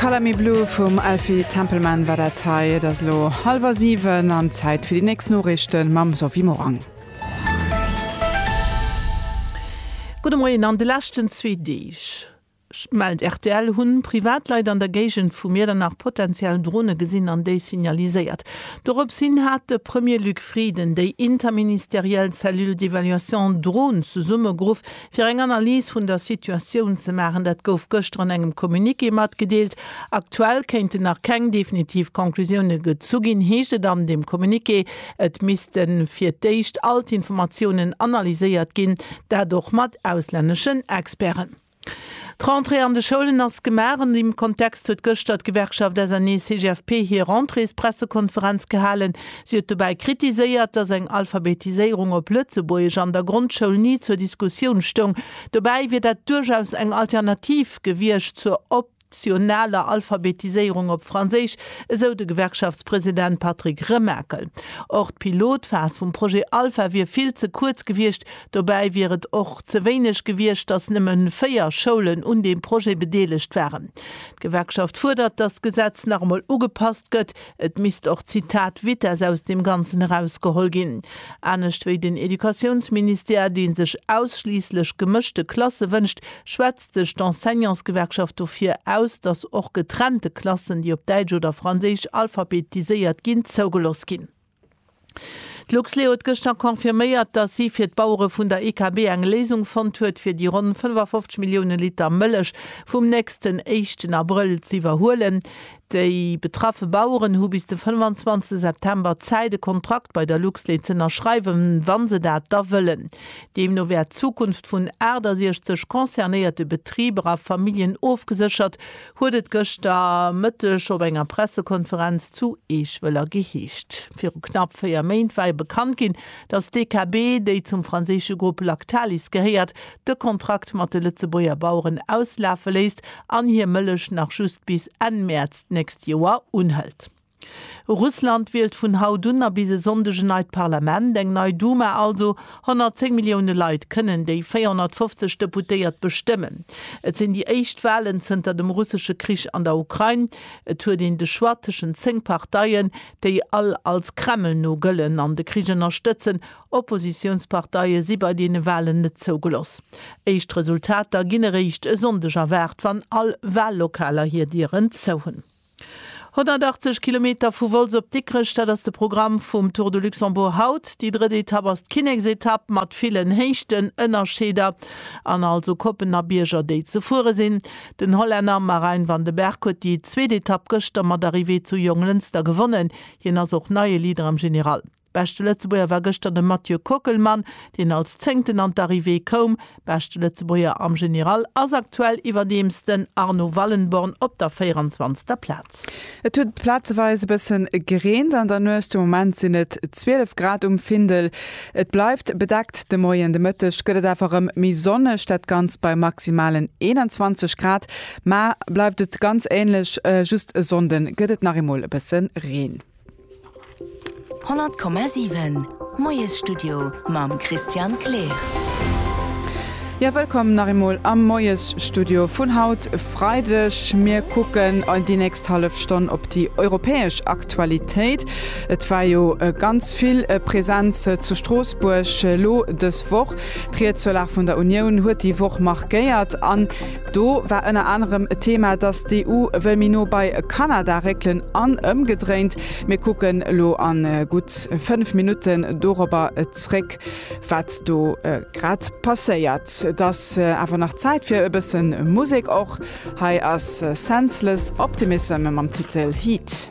Color Me Blue vum Elfie Templeman war dat hei. Et ass lo hallwer 7 an Zäit fir déi nächst Noriichten mam Sophie Morang. Gudde Moien, An de leschten zwee Deeg, mellt rtl, hunn Privatleit an der Géigend vu Miedernach potenziell Drone gesinn an déi signaliséiert. Dorops hin hat de Premier Luc Frieden déi interministeriell Cellule d'évaluation Drone zesummegeruff, Fir eng Analys vun der Situatioun ze maachen, dat gouf gëschter an engem Communiqué matgedeelt. Aktuell kéinten nach keng definitiv Conclusioune gezu ginn, heescht et an deem Communiqué. Et misste fir d'éischt all d'Informatiounen analyséiert ginn, dat och mat auslänneschen Experten. D'Rentrée an de Schoulen ass gemaach. An deem Kontext huet gëschter d'Gewerkschaft SNEE-CGFP hir Rentréespressekonferenz gehalen. Si huet dobäi kritiséiert, datt eng Alphabetiséierung op Lëtzebuergesch an der Grondschoul ni zur Diskussioun stoung. Dobäi wier dat duerchaus eng Alternativ gewiescht zur optionaler Alphabetiséierung op Franséisch, esou de Gewerkschaftspresident Patrick Remakel. Och d'Pilotphas vum Projet Alpha wier vill ze kuerz gewiescht. Dobäi wier et och ze wéineg gewiescht, datt nëmme véier Schoulen un deem Projet bedeelegt waren. D'Gewerkschaft fuerdert, datt d'Gesetz nach emol ugepasst gëtt. Et misst och d'Zitat Vitess aus deem Ganzen erausgeholl ginn. Anescht wéi den Educatiounsministère, dee sech ausschliisslech gemëschte Klasse wënscht, schwätzt sech d'Enseignantsgewerkschaft dofir aus, datt och getrennte Klassen, déi op däitsch oder franséisch alphabetiséiert ginn, zougelooss ginn. D'Luxlait huet gëschter confirméiert, datt si fir d'Bauere vun der IKB eng Léisung fonnt huet, fir déi ronn 55 Millioune Liter Mëllech vum nächsten éischten Abrëll z'iwwerhuelen. Déi betraffe Baueren hu bis de 25 September Zäit, e Kontrakt bei der Luxlait z'ënnerschreiwen, wa se dat da wëllen. Deemno wär d'Zukunft vun 68 concernéierte Betriber a Familljen ofgeséchert, huet et gëschter Mëtteg op enger Pressekonferenz zu Eeschwëller geheescht. Viru knapp 4 Méint war jo bekannt ginn, datt d'EKB, déi zum franséische Grupp Lactalis gehéiert, de Kontrakt mat de Lëtzebuerger Baueren auslafe léisst an hir Mëllech nach just bis Enn Mäerz d'nächst Joer unhëlt. Russland wielt vun haut un a bis e Sonndeg en neit Parlament, eng nei Duma also. 110 Millioune Leit kënnen déi 450 Deputéiert bestëmmen. Et sinn déi éischt Walen zënter dem russesche Krich an der Ukrain. Et huet een de Choix tëschent zéng Parteien, déi all als Kreml-no gëllen an de Krich ënnerstëtzen. Oppositiounsparteie si bei deene Walen net zougeloss. Éischt Resultater ginn eréischt e Sonndeg erwaart, wann all Wallokaler hir Dieren zou hunn. 180 Kilometer vu Wolz op Dikrech, dat ass de Programm vum Tour de Luxembourg haut. Déi drëtt Etapp ass d'Kinneksetapp mat villen Héichtenënnerscheeder an also Koppen a Bierger, déi ze fuere sinn. Den Hollänner Marijn van den Berg huet déi zweet Etapp gëschter mat Arrivée zu Jonglënster gewonnen. Hien ass och neie Leader am General. Beschte Lëtzebuerger war gëschter de Mathieu Kockelmann, deen als Zéngten an d'Arrivée koum. Beschte Lëtzebuerger am General ass aktuell iwwerdeems den Arno Wallenborn op der 24. Plaz. Et huet plazeweis e bëssen gereent an der Nuecht. De Moment sinn et 12 Grad um Findel. Et bleift bedeckt de Moien. De Mëtteg gëtt et awer rem méi sonneg, dat Ganzt bei maximalen 21 Grad. Mar bleift et ganz ähnlech, just e Sonnden gëtt et nach eemol e bësse Reen. 100,7 Moiesstudio mam Christian Kleer. Jo, wëllkomm nach eemol am Moiesstudio vun haut Freideg. Mir kucken déi nächst hallef Stonn op déi europäesch Aktualitéit. Et war jo ganz vill Presenz zu Stroossbuerg elo dës Woch. D'Ried zur Lag vun der Unioun huet déi Woch markéiert an Do war ënner anerem e Thema, dass d'EU wëll méi no bei Kanada réckelen an ëmgedréint. Mir kucken elo a gutt fënnf Minutten dorobber zréck, wat do grad passéiert. Et ass awer nach Zäit fir e bësse Musek och. Hei ass Senseless Optimism mam Titel Heat.